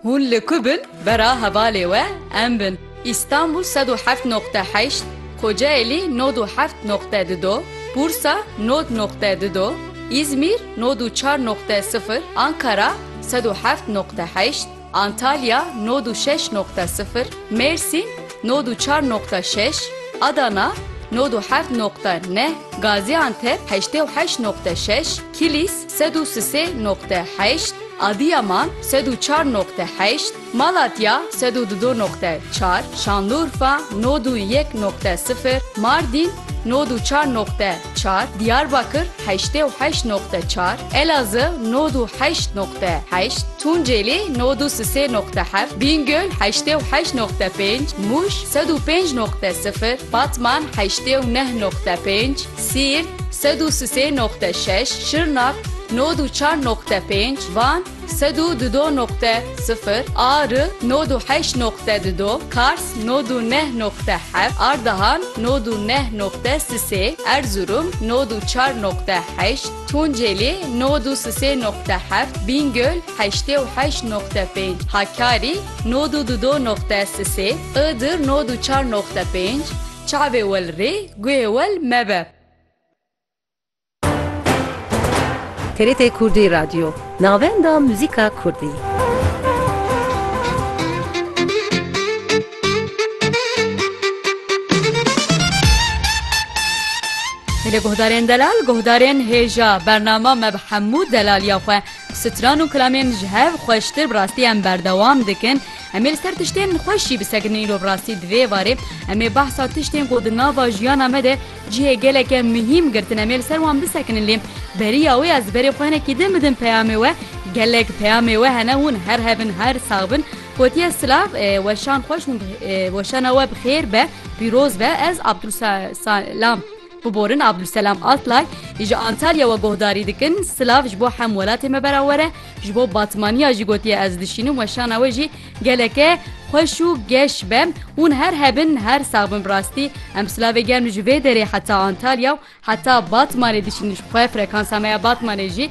Hûn li ku bin bera hevalê we em bin. Îstanbul sed û heft noqte heşt, Kocaelî nod û heft noqte du do, Bursa nod noqte du do, Îzmîr nod û çar noqte sifir, Ankara sed û heft noqte heşt, Antalya nod û şeş noqte sifir, Mêrsîn nod û çar noqte şeş, Adana nod û heft noqte neh, Gazîantep heştê û heşt noqte şeş, Kilîs Sed û sisê noqte heşt, Adiyaman, sed û çar noqte heşt, Malatya, sed û dudo noqte çar, Şanlurfa, nod û yek noqte sifir, Mardîn, nod û çar noqte çar, Diyarbakir, heştê û heşt noqte çar, Elazığ, nod û heşt noqte heşt, Tunceli, nod û sisê noqte heft, Bîngöl, heştê û heşt noqte pênc, Mûş, sed û pênc noqte sifir, Batman, heştê û neh noqte pênc, Siirt, sed û sisê noqte şeş, Şirnak, nod û çar noqte pênc, Van, sed û dudo noqte sifir, Ari, nod û heşt noqte dudo, Kars, nod û neh noqte heft, Ardahan, nod û neh noqte sisê, Erzurum, nod û çar noqte heşt, Tunceli, nod û sisê noqte heft, Bîngöl, heştê û heşt noqte pênc, Hakkari, nod û dudo noqte sisê, Iğdır, nod û çar noqte pênc, Çavê wel rê, guhê wel mebe. TRT Kurdî Radyo, navenda muzîka kurdî. Li guhdarên delal guhdarên hêja bernama me bi hemû delaliya xwe stran û kilamên ji hev xweştir bi rastî em berdewam dikin. Em ê li ser tiştên xweş jî bisekinin îro bi rastî di vê varê em ê behsa tiştên ku di nava jiyana me de cihê geleke muhîm girtin em ê li ser wan bisekinin lê beriya wê ez berê xwe hinekî din bidim peyamê we gelek peyamê we hene hûn her hebin her sax bin gotiye silav weşan xweş hûn weşana we bi xêr be pîroz be ez Abdul Salam Biborin Abdulselam Altlay ji Antalyawe guhdarî dikin, Silav ji bo hem welatê me berawer e, ji bo Batmaniya jî gotiye ez dişînim we şana we jî geleke xweş û geş be. Hûn her hebin her sax bin bi rastî em silavê germ ji vê derê heta Antalya û heta Batmanê dişînin ji xwe frekansa me ya Batmanê jî